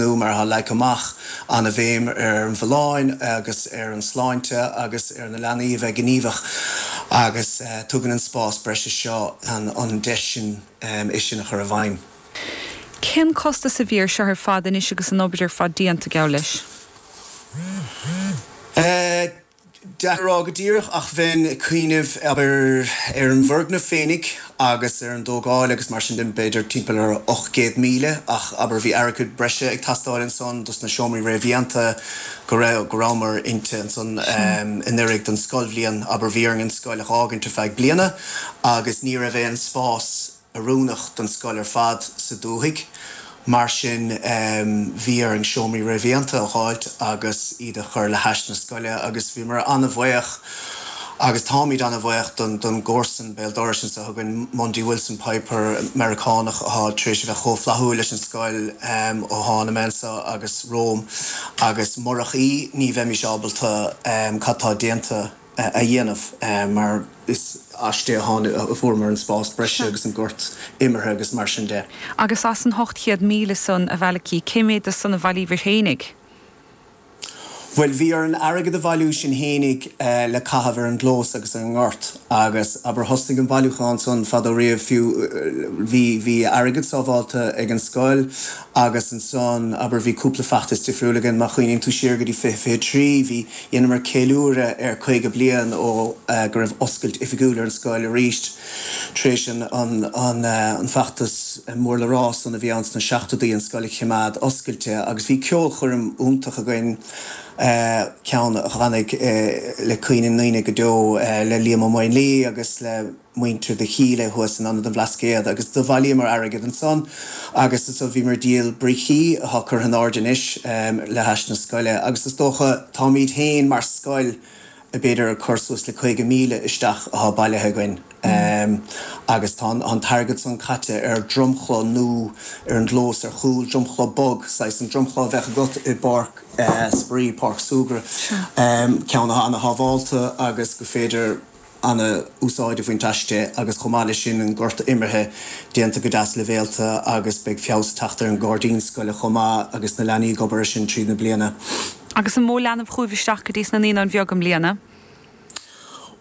atá leagtha amach, an-bhéim ar an bhfolláine agus ar an tsláinte agus ar na leanaí a bheith gníomhach agus tugann an spás breise seo an deis sin é sin a chur i bhfeidhm. Cén costas a bhí air seo ar fad anois agus an obair ar fad déanta, geall leis? Deacair a rá go díreach, ach bheinn ag cuimhneamh, abair, ar an bhfoirgneamh féinig agus ar an dtógáil agus mar sin de, b'fhéidir timpeall ar ocht gcéad míle, ach abair bhí airgead breise ag teastáil ansan dos na seomraí réamhdhéanta go raibh, go rabhamar inti ansan anuiridh don scoilbhliain, abair bhí orainn an scoil a dh'fhágaint ar feadh bliana agus ní raibh aon spás, oiriúnach don scoil ar fad sa dúthaigh, mar sin bhí orainn seomraí réamhdhéanta a dh'fháilt agus iad a chur le hais na scoile agus bhíomar ana-bhaoch agus táimid ana-bhaoch don gcomharsan béal dorais anso chugainn, Mundy Wilson Piper, Meiriceánach athá tar éis a bheith chomh flaithiúil leis an scoil ó thána mé anso agus romham agus murach í ní bheimís ábalta cad tá déanta a dhéanamh mar is aisti a fuaireamar an spás breise agus an gort imeartha agus mar sin de. Agus as an ocht gcéad míle san, a Mhalachy, cé mhéad de san a bhailíobhair féinig? Bhuel, bhí orainn airgead a bhailiú sinn fhéinig le caitheamh ar an gclós agus ar an ngort agus, abair, thosnaigh an bailiúchán san fadó riamh, fiú. Bhí airgead sábháilte ag an scoil Agus ansan, abair, bhí cúpla feachtas difriúil againn, má chuimhníonn tú siar go dtí fiche, fiche trí, bhí, dheineamar ceiliúradh ar caoga bliain ó, eh, go raibh oscailt oifigiúil ar an scoil arís, tar éis an, an, an, eh, an feachtas mór le rá san a bhí ann sna seachtóidí, an scoil a chimeád oscailte. Agus bhí ceolchoirm iontach againn, eh, ceann a tháinig, eh, i gcuimhne na ndaoine go deo, eh, le Liam Ó Maonlaí agus le, muintir Chinnéide thuas in Ionad an Bhlascaoid agus do bhailíomar airgead ansan agus ansan bhíomar ag díol brící, atá curtha in airde anois, le hais na scoile agus is dócha, táimíd féin mar scoil ag b'fhéidir ag cur suas le caoga míle isteach atá bailithe againn agus tá an t-airgead san caite ar dhromchla nó ar an gclós ar chúl, dromchla bog, saghas an dromchla a bheadh agat i bpáirc spraoi, páirc súgradh, ceann atá ana shábhálta agus gur féidir. ana úsáid a bhaint aisti agus chomh maith leis sin an gort imeartha déanta go deas libhéalta agus beidh feabhas ag teacht ar an ngairdín scoile chomh maith agus na leanaí ag obair ar sin tríd na bliana. Agus an mó leanbh chugaibh isteach go dtí sna Naíonáin Bheaga i mbliana?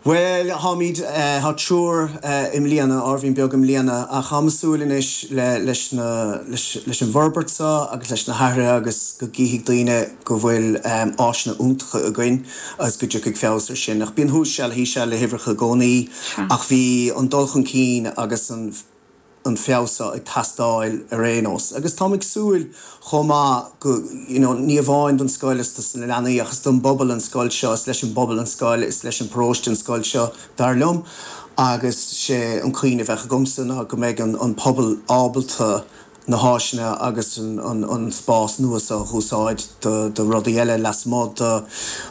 Bhuel táimid, tá triúr i mbliana, uimhir bheag i mbliana ach táim ag súil anois le, leis na, leis, leis an bhforbairt seo agus leis na hathruithe agus go gcífidh daoine go bhfuil áiseanna iontacha againn. agus go dtiocfaidh feabhas ar sin. Ach bíonn thuas seal thíos seal le huimhreacha i gcónaí. Ach bhí an dul chun cinn agus an an feabhas seo ag teastáil ar aon nós. Agus táimid ag súil chomh maith go, you know, ní amháin don scoil is dos na leanaí ach don bpobal an scoil seo, is leis an bpobal an scoil, is leis an bparóiste an scoil seo, dar liom. Agus sé an chaint a bheadh agamsa ná go mbeidh an an pobal ábalta, na háiseanna agus an spás nua seo a úsáid do rudaí eile lasmuigh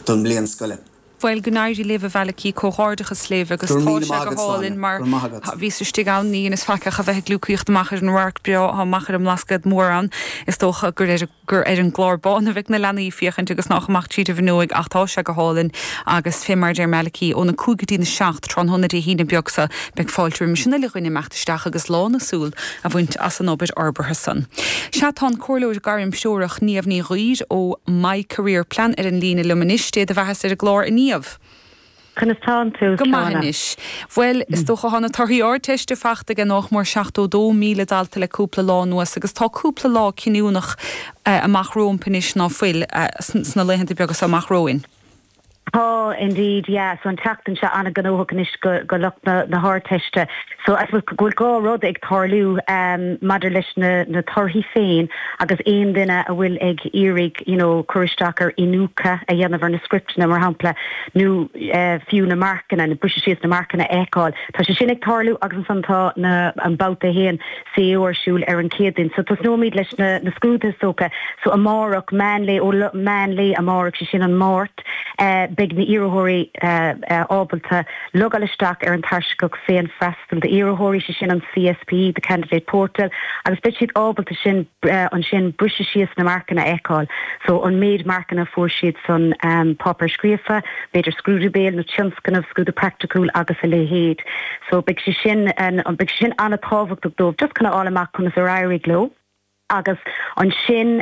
don mbliain scoile. Bhuel, go n-éirí libh, a Mhalachy, comhghairdeachas libh agus tá sé go hálainn mar a bhíos istigh ann, níor dheineas faic ach a bheith ag gliúcaíocht amach ar an radharc breá atá amach ar an mBlascaod Mór ann, is dócha gur ar an. gur ar an gclár bán a bheidh na leanaí ag féachaint agus nach amach tríd an bhfuinneoig ach tá sé go hálainn agus fé mar a deir Malachy, ón 5 go dtí an 7 tráthnóna Dé hAoine beag seo beidh fáilte roimh an uile dhuine imeacht isteach agus lán a súl a bhaint as an obair fhorbartha san. Sea, tá an comhairleoir gairmthreorach Niamh Ní Dhuibhir ó My Career Plan ar an líne liom anois. Dé do bheathasa ar an gclár, a Niamh! Conas tánn tú? Go maith anois. Bhuel, is dócha tá na torthaí Ardteiste fachta age nách mór 72,000 dalta le cúpla lá anuas agus tá cúpla lá cinniúnach amach rómpu anois ná fuil, sna laethanta beaga so amach romhainn? Tá, indeed, yeah, so an tseachtain seo an-ghnóthach anois do lucht na hArdteiste so I suppose go bhfuil dhá rud ag tarlú maidir leis na torthaí féin agus aon duine a bhfuil ag iarraidh you know, cur isteach ar iniúchadh a dhéanamh ar na scripteanna, mar shampla, nó fiú na marcanna, na briseadh síos na marcanna a fheiceáil. Tá sé sin ag tarlú agus ansan tá na, an babhta a haon CAO ar siúl ar an Chéadaoin. So tosnóimid leis na, na scrúduithe, is dócha. So amárach, meán lae, ó la, meán lae amárach, sé sin an Mháirt, eh, beidh na iarrthóirí, eh, eh, ábalta logáil isteach ar an tairseach féinfhreastal So d'iarrthóirí, sé sin an CSP, the Candidate Portal, agus beidh siad ábalta sin ansin briseadh síos na marcanna a fheiceáil, so an méid marcanna a fuair siad sa pháipéar scríofa, b'fhéidir scrúdú béil nó tionscnamh, scrúdú praiticiúil agus a leithéid. So beidh sé sin, beidh sé sin an-tábhachtach dóibh just chun a fháil amach conas ar éirigh leo agus ansin,